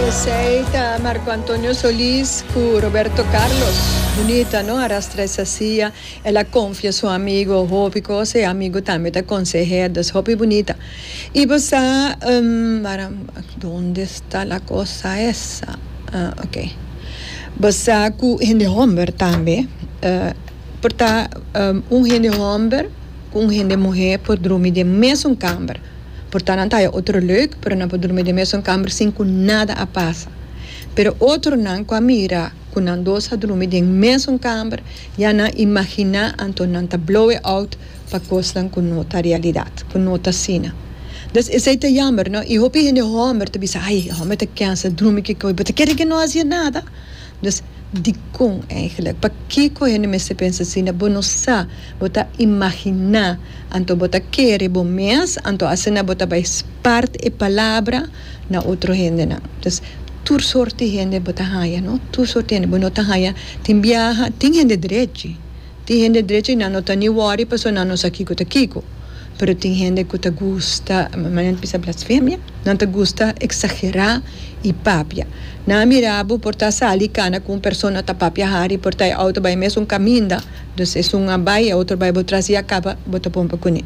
Esey ta Marco Antonio Solis cu Roberto Carlos. Bunita no, a rastra esa silla, el a confia su amigo hopi cosa y amigo tambe ta conseher, dus hopi bunita. Y bo sa, donde esta la cosa esa? Ah ok. Bo sa cu hende homber tambe por ta un hende homber cu un hende muher por drumi den mesun camber. Porta nan ta haya otro leuk, pero nan por durmi den mesun kamber sin ku nada a pasa. Pero otronan ku a mira ku nan dos a durmi den mesun kamber, ya nan imaginá anto nan ta blowe out pa kosnan ku no ta realidat, ku no ta asina. Dus esei ta yamber, no? I hopi hende hòmber ta bisa, Ai, e hòmber ta kensa, durmi kiko, i bo ta kere ke no a hasié nada? Dus, dikon eigenlijk? Pakiko hende mester pensa asina? Bo no sa, bo ta imaginá, anto bo ta kere bo mes, anto asina bo ta bai spart e palabra na otro hendenan. Dus, tur sort di hende bo ta haña, no? Tur sort di hende bo no ta haña. Tin biaha, tin hende drechi. Tin hende drecha y nan no ta ni wori pasobra nan no sa kico ta kico. Pero tin hende cu ta gusta, manera nan bisa blasfemia, nan ta gusta exagera y papia. Nan a mira bo por ta sali y cana cu un persona ta papia hari y por ta e auto bai e mesun caminda, dus esun a bai e otro a bai bo tras y a caba bo ta pompa cune.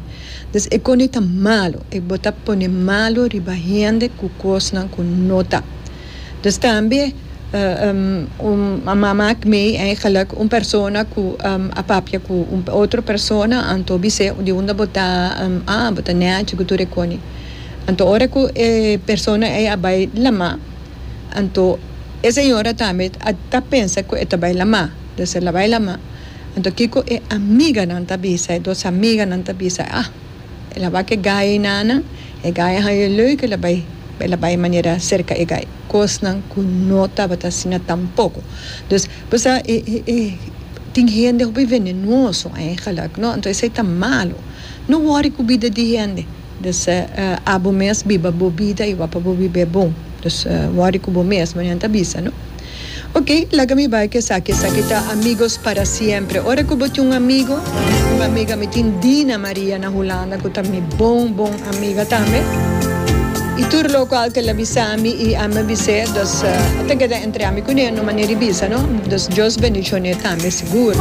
Dus e cosnan ta malo y bo ta pone malo riba hende cu cosnan cu no ta. Dus tambe un mama a kme eigenlijk un persona ku a papia ku un otro persona anto bis'é di unda bo ta a bo ta nèchi ku tur e kone. Anto ora ku e persona ei a bai lamá anto e señora tambe a ta pensa ku e ta bai lamá. Dus el a bai lamá anto kiko e amiganan ta bisa, e dos amiganan ta bisa, ah. El a bak e gai ei nana, e gai a haña e leuke, el a bai, el a bai manera serka e gai, kosnan ku no tabata asina tampoko. Dus, bo sa e, e, e, tin hende hopi venenoso eigenlijk, no? Anto esei ta malu. No wòri ku bida di hende. Dus, abo mes biba bo bida i wak pa bo biba e bon. Dus, wòri ku bo mes, bo nan ta bisa, no? Ok, laga mi bai cu esaki. Esaki ta Amigos para Siempre. Ora cu bo tin un amigo, un amiga, mi tin Dina Maria na Hulanda cu ta mi bon bon amiga tambe. Y tur loco al tel a bisa mi y ami a bis'e, dus a ta keda entre ami cune, no manera di bisa no. Dus Dios bendicion'e tambe sigur.